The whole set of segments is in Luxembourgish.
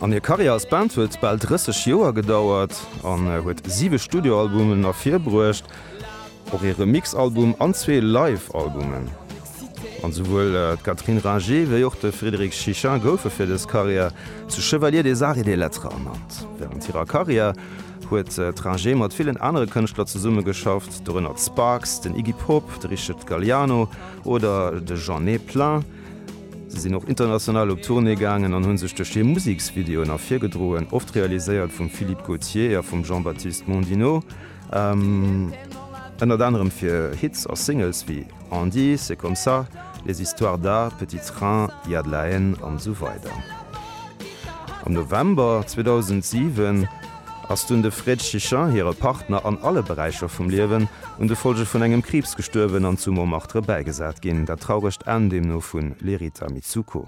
An hir Karriär als Band huet bal 30 Joer gedauert an huet siwe Studioalbumen ervirbruecht, och ee Remixalbum an zwee Live-Albumen. An souwuel d'Catherine Ringer wéi och de Frédéric Chichin goufe fir dës Karriär zu Chevalier des Arts et des Lettres ernannt. Wärend hirer Karriär huet d'Ringer mat villen anere Kënschtler zesummegeschafft, dorënner d'Sparks, den Iggy Pop, de Richard Galliano oder de Jeanné Plain. Si sinn och international op Tournée gaangen an hu sech duerch hir Museksvideoen ervirgedroen, oft realiséiert vum Philippe Gautier a vum Jean-Baptiste Mondino. Ënnert anerem fir Hits a Singles wéi On dit, C'est comme ça, Les histoires d'A, Petit train, Il y a de la haine an esou weider. Am November 2007, Ass dunn de Fred Chichin, hire Partner an alle Beräicher vum Liewen, un de Folge vun engem Kriibs gestuerwen an zu Montmartre bäigesat ginn. Dat trauregt Enn deemno vu Lerita Mitsuko.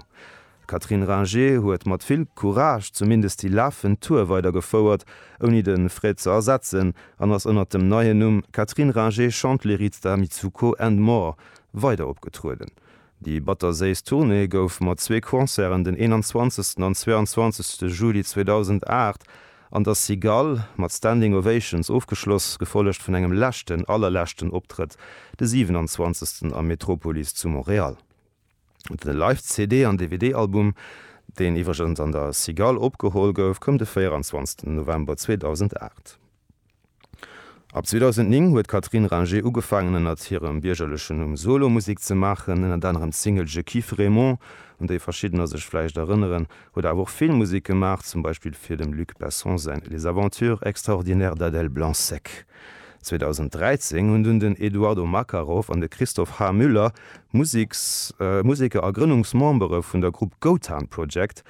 D'Catherine Ringer huet mat vill Courage zumindest déi lafend Tour weider gefouert, ouni de Fred ze ersetzen, an ass ënnert dem neien Numm Catherine Ringer Chante Lerita Mitsuko and More weider opgetrueden. Déi batterséiss Tournée gouf mat zwee Concerten den 21 an 22 Juli 2008 an der Cigale mat Standing Ovations ofgeschloss, gefollegt vun engem leschten, allerleschten Optrëtt de 27 am Metropolis zu Montréal. De Live-CD an DVD-Album, deen iwwregens an der Cigale opgeholl gouf, koum de 24 November 2008. Ab 2009 huet d'Catherine Ringer ugefaangen ënnert hirem biergerlechen Numm Solo Musek ze maachen. Ënnert anerem d'Single Je kiffe Raymond, un déi verschiddener sech vläicht erënneren, huet awer och Filmmusek gemaach, zum Beispill fir dem Luc Besson säin Les aventures extraordinaires d'Adèle Blanc-Sec. 2013 hunn dunn den Eduardo Makarov an de Christophe H. Müller, Museker a Grënnungsmembere vun der Grupp Gotan Project,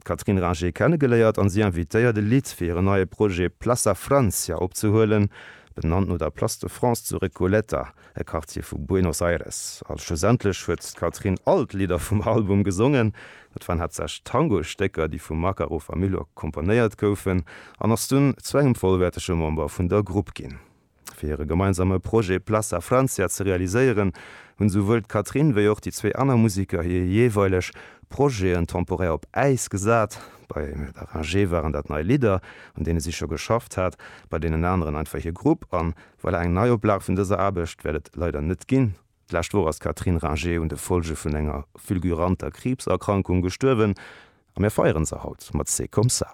d'Catherine Ringer kennegeléiert an si invitéiert e Lidd fir hiren neie Projet Plaça Francia opzehuelen, benannt no der Place de France zu Recoleta, e Quartier vu Buenos Aires. A schlussendlech huet d'Catherine all d'Lidder vum Album gesongen. Et waren haaptsächlech Tango-Stécker, déi vum Makarov a Milor komponéiert goufen, an ass dunn zu engem vollwäertege Member vun der Grupp ginn. Fir hire gemeinsame Projet Place a Francia ze realiséieren, hunn souwuel d'Catherine wéi och déi zwee aner Museker hir jeeweileg Projeten temporär op Äis gesat. Bei La Rangée waren dat nei Lidder, un deene si scho geschafft hat, bei deenen aneren einfach hir Grupp. A voilà, eng Neioplage vun dëser Aarbecht wäert et leider net ginn. D'lescht Woch ass d'Catherine Rangé un de Folge vun enger fulguranter Kriibserkrankung gestuerwen a mir feieren se haut mat C'est comme ça.